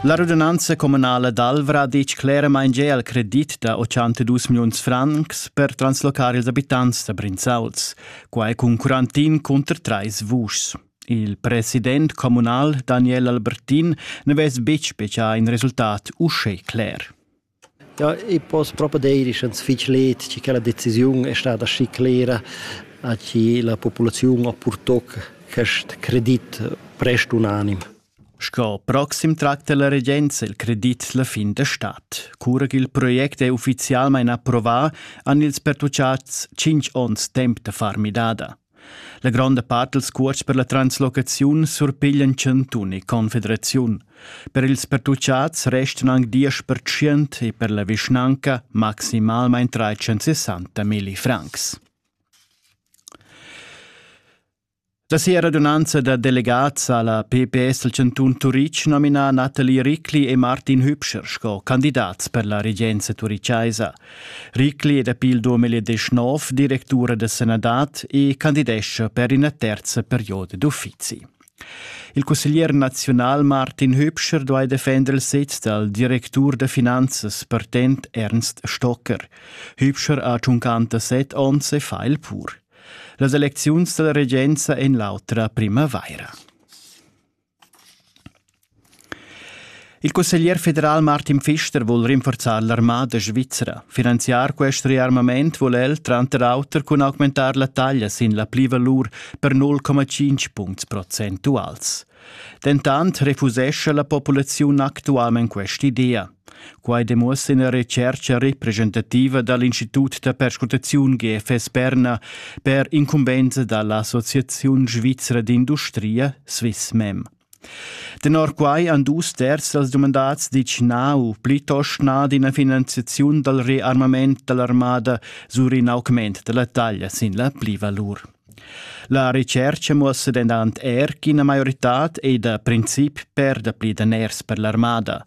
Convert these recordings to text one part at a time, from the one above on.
La radunanza communala d'Alvra dic cleramain gia al credit da 82 milliuns francs per translocar ils abitants da Brinzauls, quai cun quarantin cunter trais vuschs. Il president communal Daniel Albertin ne vess betg specià in resultat uschè cler. Ja, i poss propa dir ischans fich let chi quella decisiun è stada aschi clera a chi la populaziun ha purtò quest credit prest unanim. Sco proxim tracta la regenza il credit la fin da stat. Cura ch'il project è uffizialmain approvà, han ils pertuchats tschinch ons temp da far midada. La gronda part dals cuosts per la translocaziun surpiglian chantun e confederaziun. Per ils pertuchats restan anc diesch pertschient e per la vischnanca maximalmain 360 milli francs. La sia radunanza da delegats a la PPS del Cantun Turitg nomina Nathalie Ricli e Martin Hübscher sco candidats per la regenza turichaisa. Ricli è dapi il 2019 directura da sanadad e candidescha per ina terza perioda d'uffizi. Il cusseglier nazional Martin Hübscher duai defender il sez dal directur da finanzas partent Ernst Stocker. Hübscher ha 57 onns e fa il pur. Las elecziuns dalla regenza en l'autra primavaira. Il cusseglier federal Martin Pfister vul rinforzar l'armada svizra. Finanziar quest rearmament vul el tranter auter cun augmentar la taglia sin la plivalur per 0,5 puncts procentuals. Dentant refusescha la populaziun actualment quest'idea. Quai demuossa ina retschercha representativa dal Institut da perscrutaziun GFS Berna per incumbensa da l'Associaziun svizra d'industria SwissMem. Tenor quai han dus terz dals dumandats ditg na u plitost na d'ina finanziaziun dal rearmament da l'armada sur in augment da la taglia sin la plivalur. La retschercha muossa dentant er ch'ina maioritad è da princip per dapli daners per l'armada.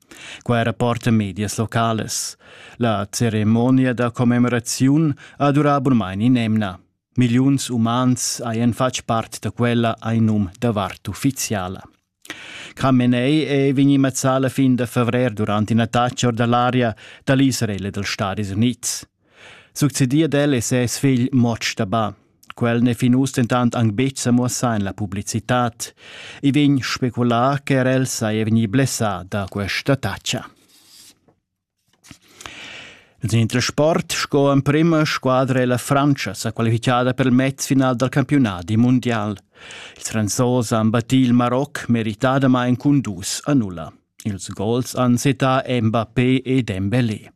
Quai rapporta medias localas. La ceremonia da commemoraziun ha durà bunmain in'emna. Milliuns umans hajan fatg part da quella ai num da vart uffiziala. Khamenei è vegnì mazzà la fin da favrer durant ina tatscha or da l'aria da l'Israel e dals Stadis Unids. Succedir ad el è ses figl Motsch da Ba. Quel n'è fin uss dentant anc betg sa muossà en la publicitad. I vegn speculà che er el saja vegnì blessà da questa taccia. In intersport sco emprima squadra è la Frantscha sa qualifichada per il mezfinal dal campiunadi mundial. Il Franzos han battì il Maroc meritadamain cun dus a nulla. Ils gols han settà Mbappé e Dembélé.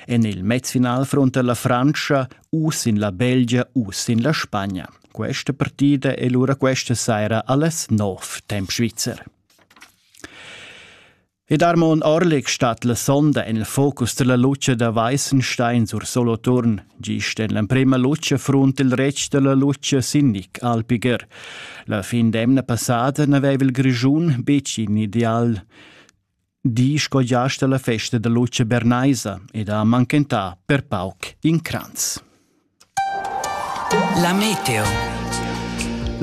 En il mezfinal frunta la Frantscha u sin la Belgia u sin la Spagna. Questa partida è lura questa saira alles Norf, temp Schweizer. Ed Armon Orlik stat la sonda en il focus della luce da Weißenstein sur Soloturn, gist en l'emprima luce frunt il retg della luce Sindic Alpiger. La fin d'emna passata n'aveva il Grischun betg in ideal. di sco giast alla festa da luce bernaisa ed ha manchentà per pauc in cranz. La meteo.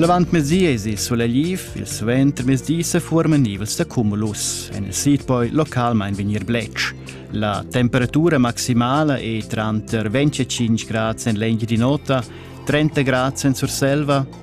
L'avant mesiesi sulegliv, il suenter mesdi se formen nivels da cumulus. En il sid poi localmain vegnir blec. La temperatura maximala è tranter 25 gradi en l'engi di nota, 30 gradi en Surselva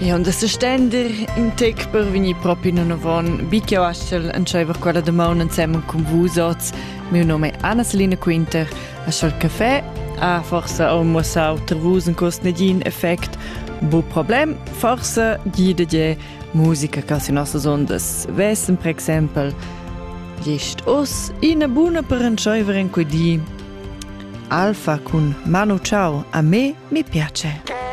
E onda sestender in tec per vegnir propi nanavon, bi che aschel entscheiver quella damaun ensemen cun vus oz. Miu nome è Anna-Selina Quinter, aschel café ha forse ho mossau ter vus in cost negin effect, bu problem, forse gi de je musica che si nostas ondas vessen per exempel gest os ina buna per entscheiver in quei di. Alfa cun Manu ciao, a me mi piace.